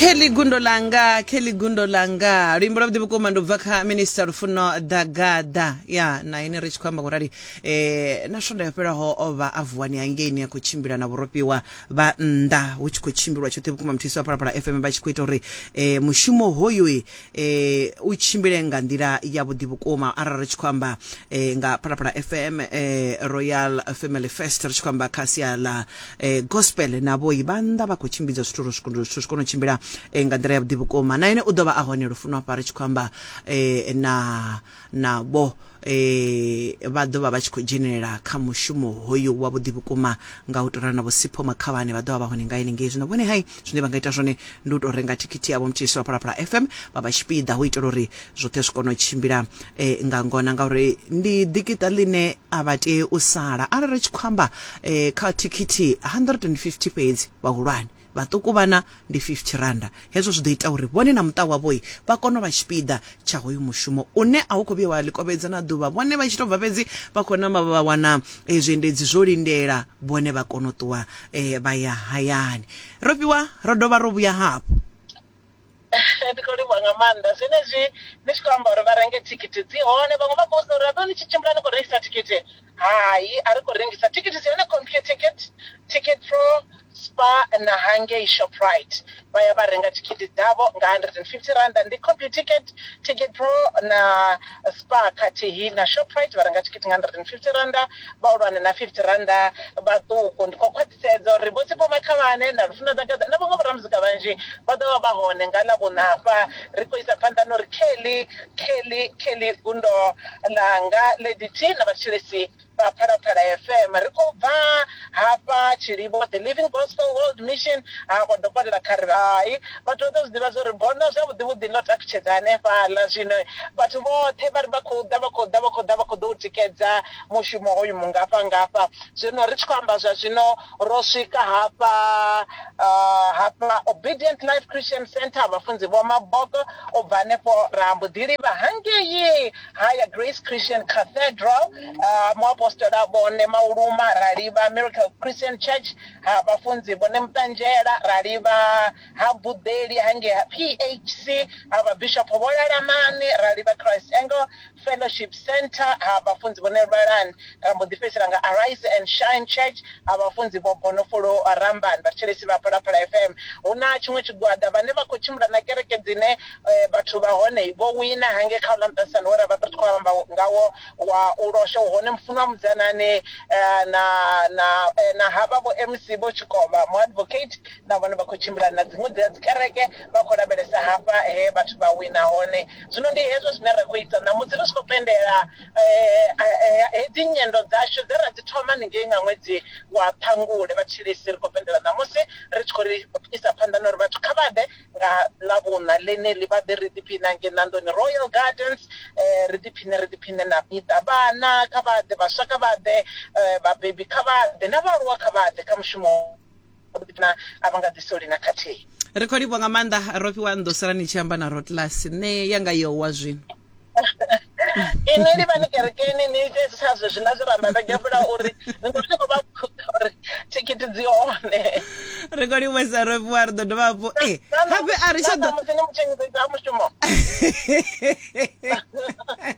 kelly gundo langa kelly gundo langa luimbo lwavhuḓi vhukuma ndi ubva kha minista lufuno dagada ya na ine ri tshi khou amba kurali eh, na swonda yo fhelaho o vha a vuwani hangeini a khou tshimbila na vhurofhiwa vha nnḓa hu tshi khou tshimbilwa tshoṱhe vhukuma muthiso wa phalaphala fm vha tshi khou ita uri eh, mushumo hoyoi eh u tshimbile nga nḓila ya vhuḓi vhukuma arali ri tshi khou amba eh, nga phalaphala fm eh, royal family fest ri tshi khou amba kha sia ḽa eh, gospel na vhoi vha nnḓa vha khou tshimbidza zwithu uri zwithu zwi kone u tshimbila eh, nga nḓila ya vhuḓi vhukuma na ene u ḓo vha a hone lufuno hafha ri tshi khou amba eh, na navho e, vha ḓo vha vha tshi khou dzhenelela kha mushumo hoyu wa vhuḓi vhukuma nga u tou ralo na vho Sipho Makhavhane vha ḓo vha vha hone nga henengei zwino vhone hai zwine vha nga ita zwone ndi u tou renga thikhithi yavho mthisi wa phalaphala fm vha vha tshipiḓa hu itela uri zwoṱhe zwi kone u tshimbila e, nga ngona ngauri ndi ḓikiṱa ḽine a vha tei u sala arali ri tshi khou amba e, kha thikhithi 150 fhedzi vhahulwane Vhaṱuku vhana ndi R50. Hezwo zwi ḓo ita uri vhone na muṱa wavho vha kone u vha tshipiḓa tsha hoyu mushumo une a u khou vhuya wa ḽikovhedza na ḓuvha. Vhone vha tshi tou bva fhedzi vha khou namba vha wana zwiendedzi zwo lindela vhone vha kona u ṱuwa vha ya hayani. Ro fhiwa ro dovha ro vhuya hafhu. ndi khou livhuwa nga maanḓa zwenezwi ni tshi khou amba uri vha renge thikhithi dzi hone vhaṅwe vha khou sina uri aḓo ni tshi tshimbila ni khou rengisa thikhithi hai a ri khou rengisa thikhithi dzi hone computer ticket ticket pro spa na hangei shoprite vha ya vha renga thikhithi dzavho nga 150 randa ndi computer ticket ticket pro na spa khathihi na shoprite vha renga thikhithi nga 150 randa vhahulwane na 50 randa vhaṱuku ndi khou khwaṱhisa sedza uri vhotsipho makhalane na lufuno ḓagaḓa na vhaṅwe vhoramuzika vhanzhi vha ḓo vha vha hone nga ḽa vhuṋa hafha ri khou isa phanḓa no ri kelly kelly kelly gundo ḽanga lady t na vhathetshelesi vha phalaphala fm ri khou bva hafha tshilivho the living gospel world mission ha kwa dokotela kharivhai vhathu vha ḓo zwi ḓivha zwori bono zwavhuḓi vhuḓi ḽo takutshedza hanefhaḽa zwino vhathu vhoṱhe vha ri vha khou ḓa vha khou ḓa vha khou ḓa vha khou ḓo u tikedza mushumo hoyu mungafha ngafha zwino ri tshi khou amba zwa zwino ro swika hafha uh, hafha obedient life christian center vhafunzi vho maboko u bva hanefho ra mbo ḓi livha hangei haya grace christian cathedral uh, muapostola vhone mauluma ra livha miracle christian church ha vhafunzi vhone muṱanzhela ra livha ha buḓeli hangei ha phc ha vhabishopo vho lalamani ra livha christ angle fellowship center ha vhafunzi vho nelwalan ra mbo ḓi fhedzisela nga arise and shine church ha vhafunzi vho bonofolo ramban vhathetshelesi vha phalaphala fm hu na tshiṅwe tshigwada vhane vha khou tshimbila na kereke dzine eh, vhathu vha hone vho wina hange kha uḽa muṱasano we ra vha ri tshi khou amba ngawo wa u losha u hone mufuno wa mudzanane eh, na na eh, na havha vho mc vho tshikovha mu advocate na vhone vha khou tshimbila na dziṅwe dzi a dzi kereke vha khou lavhelesa hafha he vhathu vha wina hone zwino ndi hezwo zwine ra khou ita ṋamusi ri tshi khou pendela hedzi nyendo dzashu dze ra dzi thoma ningei nga ṅwedzi wa ṱhangule vha tshilisi ri khou pendela ṋamusi ri tshi khou ri isa phanḓa na uri vhathu kha vha ḓe nga ḽavhuṋa ḽeneḽi vha ḓe ri ḓiphine hange ṋandoni royal gardens ri ḓiphine ri ḓiphine na miṱa vhana kha vha ḓe vhaswa kha vha ḓe vhabebi kha vha ḓe na vhaaluwa kha vha ḓe kha mushumo ḓo ḓi na a vha nga ḓi soli na khathihi ri khou livhuwa nga maanḓa ro fhiwa ndo sala ni tshi amba na rotlas nṋe yanga yowa zwino inwi ni vha ni kerekeni ni ite sa zwezwi na zwi ramba vhege vhula uri ni khou khou vha uri thikhithi dzi hone ri khou livhuwa sa ro fhiwa ri ḓo dovha hafhu e eh, hape a ri tsha ḓo musi ni muthengiḓo ita mushumo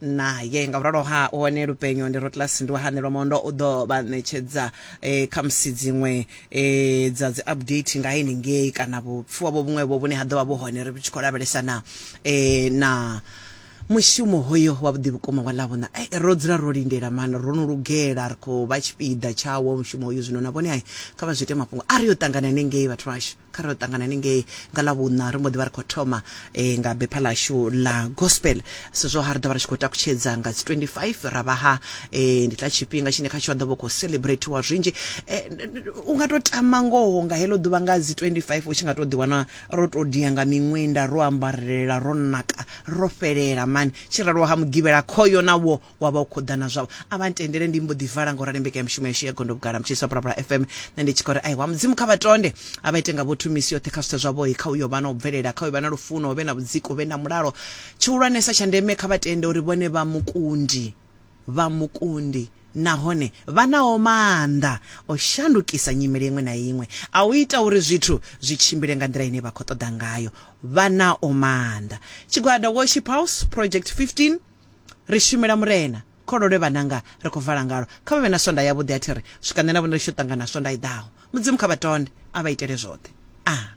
naye nga vhuralo ha hone lupenyo ndi rotlas ndi wa hanelwa mondo u ḓo vha ṋetshedza eh, khamusi dziṅwe eh, dza dzi update nga henengei kana vhupfiwa vho vhuṅwevho vhune ha ḓo vha vhu hone ri tshi khou lavhelesa na eh, na mushumo hoyo wa vhuḓi vhukuma wa ḽavhona ai ro dzula ro lindela mani ro no lugela ri khou vha tshipiḓa tshawo mushumo hoyo zwino na vhone ai kha vha zwi ite mafhungo a ri yo ṱangana nengei vhathu vhashu kha ro ṱangana ningei nga ḽa vhuṋa ri mbo ḓi vha ri khou thoma um nga bepha ḽashu ḽa gospel so zwo ha ri ḓo vha ri tshi khou takutshedza nga dzi 25 ra vha ha um ndi tla tshifhinga tshine kha tsho a ḓo vha khou celebratiwa zwinzhi um u nga tou tama ngoho nga heḽo ḓuvha nga dzi 25 u tshi nga tou ḓiwana ro tou dia nga miṅwenda ro ambarelela ro naka ro fhelela mani tshi raloho ha mugivhela khoyo na wo wa vha u khou ḓa na zwavho a vha ntendele ndi mbo ḓi vala nga u rali mbekanyamushumo yashu ya gondo vhugala mutshiliswa phalaphala fm nṋe ndi tshi khou ri ai wa mudzimu kha vha tonde a vha ite nga vho thumisi yoṱhe kha zwithu zwavho kha uyo vha na u bvelela kha uyo vha na lufuno hu vhe na vhudziki hu vhe na mulalo tshihulwanesa tsha ndeme kha vha tende uri vhone vha mukundi vha mukundi nahone vha naho maanḓa o shandukisa nyimele iṅwe na iṅwe a u ita uri zwithu zwi tshimbile nga nḓila ine vha khou ṱoḓa ngayo vha nao maanḓa tshigwada worship house project 15 Ri shumela Murena. Khololwe vhananga, ri khou vala ngalo. Kha vha vhe na swondaha yavhuḓi. A thi ri, Swika nṋe na vhone ri tshi yo ṱangana swondaha i ḓaho. Mudzimu kha vha tonde, a vha itele zwoṱhe. A.